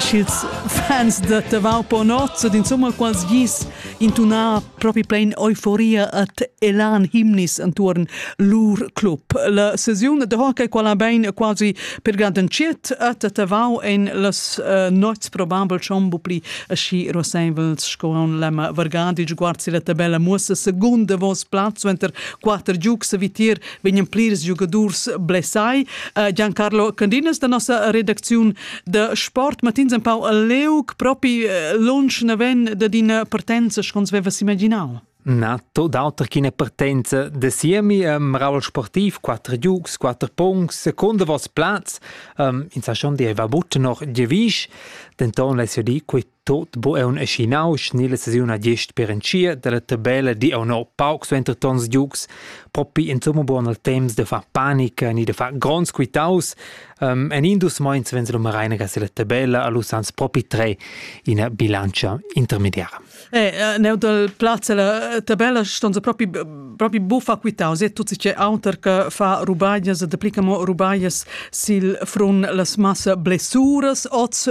ch'ils fans da Tavau Ponozzo d'insomma quals gis intunà propi plain euforia at elan himnis antuorn lur club. La sesiun de hockey quala bein quasi pergadanchiet at Tavau en las uh, nots probabel schon pli aschi roseivels sco on l'emma Vargadi sguard si la tabella muossa seconda vos platz venter quater giugs vitir vegnan plirs giugadurs blessai. Uh, Giancarlo Candinas da nossa redacziun de sport matins empau a leuc propi eh, lunsch naven de d'ina partenza schons vevas imaginau Na, to d'auter ch'ina partenza de siemi um, Raul Sportiv, quattro giugs, quattro punts, secondo vos plaz, um, in sa schon deva butte noch Gevisch, denton less io di, quei Tot bu aun aschi nausch ni la sesiun ha gist per entschiet dalla tabella di aunc no pauc suenter tons giugs propi insomma buon al temps da far panica ni da far gronds quitaus um, en in dus meins vens lu Mareinaga silla tabella a lu sans propi tre ina bilantscha intermediara. Eh, eh neu dal plaz la eh, tabella ston se propi propi buffa quitaus e tutti che auter che fa rubaglias e daplicamo rubaglias sil frun las massa blessuras oz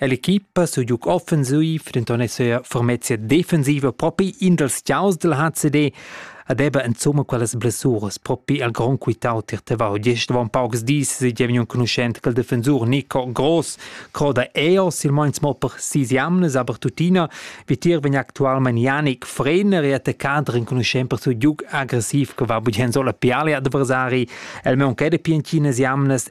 L'equipa su giuc offensiv, denton ei sia fermezia defensiva propi in dals tiaus dal HCD ed ebba insomma quellas blessuras propi al grond quitau tier Tavau. Gest avon paucs dis se gievni enconuschent quel defensur Nico Gross, croda eo silmeins mo per sis jamnas, aber tuttina vitier vegn actualmein Janik Frener e attaccader enconuschent per su giuc agressiv che va bugen solo piali adversari, el meunca de piancinas jamnas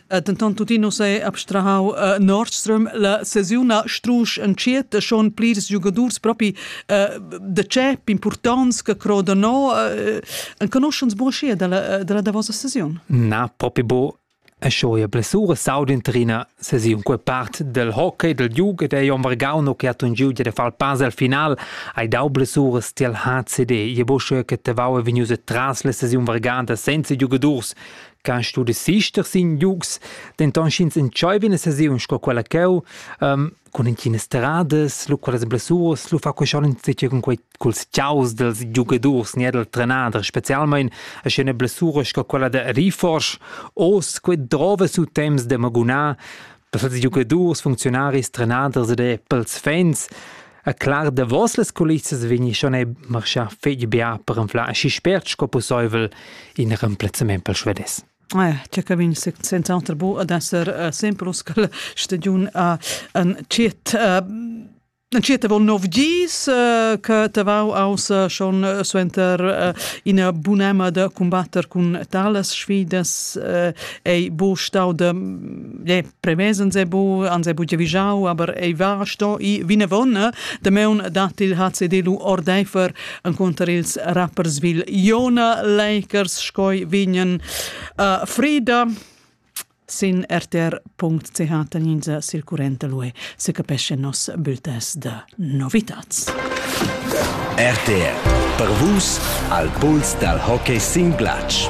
Dentant tuttina uss è abstrahau uh, Nordström la sesiuna strusch entschiet schon plirs giugadurs propi uh, de chep importants che croda no uh, enconuschens buon schier dalla, dalla davosa sesiun? Na, propi bo e schoia blessura saudin trina sesiun que part del hockey del Juge de Jon Vargauno che hat un giugia de far pass al final hai dau blessuras til HCD je bo che te vau vegnius tras la sesiun varganta senza giugadurs Can studesister sin giugs, denton sch'ins entscheiva ina sesiun sco quella cheu, um, cun entginas stradas, lu quellas blessuras, lu fa quei schon insatge cun quei culs tiaus dels giugadurs ne del trenader, specialmein a schena blessura sco quella de Riforsch, os quei drova su temps de magunar pels giugadurs, funzionaris, trenaders ed pels fans. E clar davos las culissas vegni schon è marschà fetg bia per anflar aschi spert sco pusseivel in remplazzament per svedes. Eh, tge cabin senz'altro bo ad esser uh, semplus che stagiun uh, en ciet uh, En cieta vol nov gis uh, che te vau aus uh, schon uh, suenter uh, ina bunema da combatter cun talas sfidas uh, ei bo stau de, yeah, premess ans è bu ans è bu giavischau aber ei va sto i vinavon dameun dat il HCD lu ordeifer enconter ils Rapperswil Iona Lakers scoi vignen uh, Frida sin rtr.ch taninza circurente lue se capesce nos bultes de novitats. RTR per vus al puls dal hockey sin glatsch.